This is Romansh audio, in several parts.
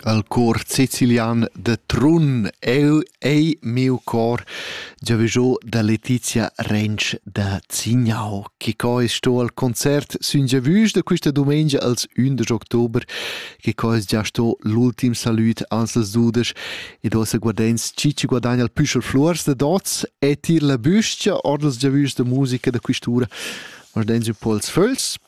Al cor sicilian da Trun eu ei miu cor giavüschò da Letizia Rensch da Zignau. Chi co es sto al concert sün giavüsch da quista dumengia als 11 october, che co es già sto l'ultim salüd ans als dudesch ed ossa guardens chi ci guadagna il püschel fluors da dots e tir la büstia or dals giavüschs da musica da quist'ura. Guardens ün po als föls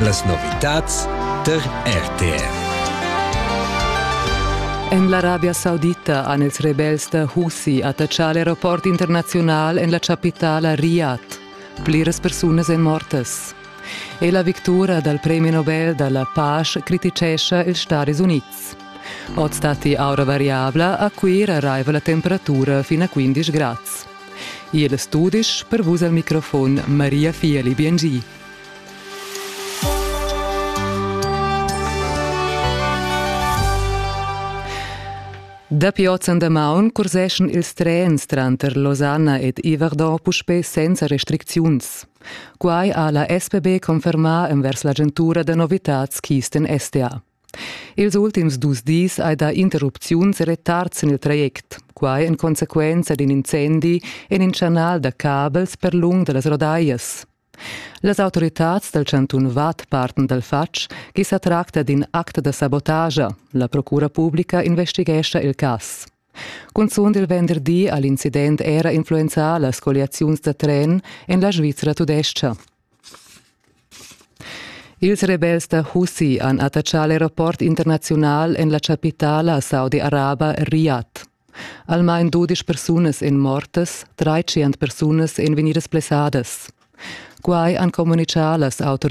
Las novitads tar RTR. En l'Arabia Saudita han ils rebels da Husi attaccà l'aeroport internaziunal en la chapitala Riyadh. Pliras persunas èn mortas. E la victura dal premi Nobel da la pace criticescha ils Stadis Unids. Oz datti aura variabla, a Cuira arriva la temperatura fin a 15 grads. Igl studisch per vus al microfon Maria Fieli Biengi. Dapi oz an damaun curseschan ils trens tranter Losanna ed Iverdon puspè senza restricziuns. Quai ha la SPB confermà envers l'agentura da novitads Kisten STA. Ils ultims dus dis hai dà interrupziuns e retards en il traject, quai en consequenza d'in incendi en in chanal da cabels per lung da las Rodaias. Las autoritads dal chantun Vad partan dal fatg ch'i sa tracta d'in act da sabotagia. La procura publica investighescha il cas. Cunzunt il venderdi ha l'incident era influenzà las colliaziuns da tren en la Svizra tudestga. Ils rebels da Husi han attaccà l'aeroport internaziunal en la chapitala saudi-araba Riyadh. Almain dudisch persunas èn mortas, tschient persunas èn vegnidas blessadas. Quai han communitgà las autoritads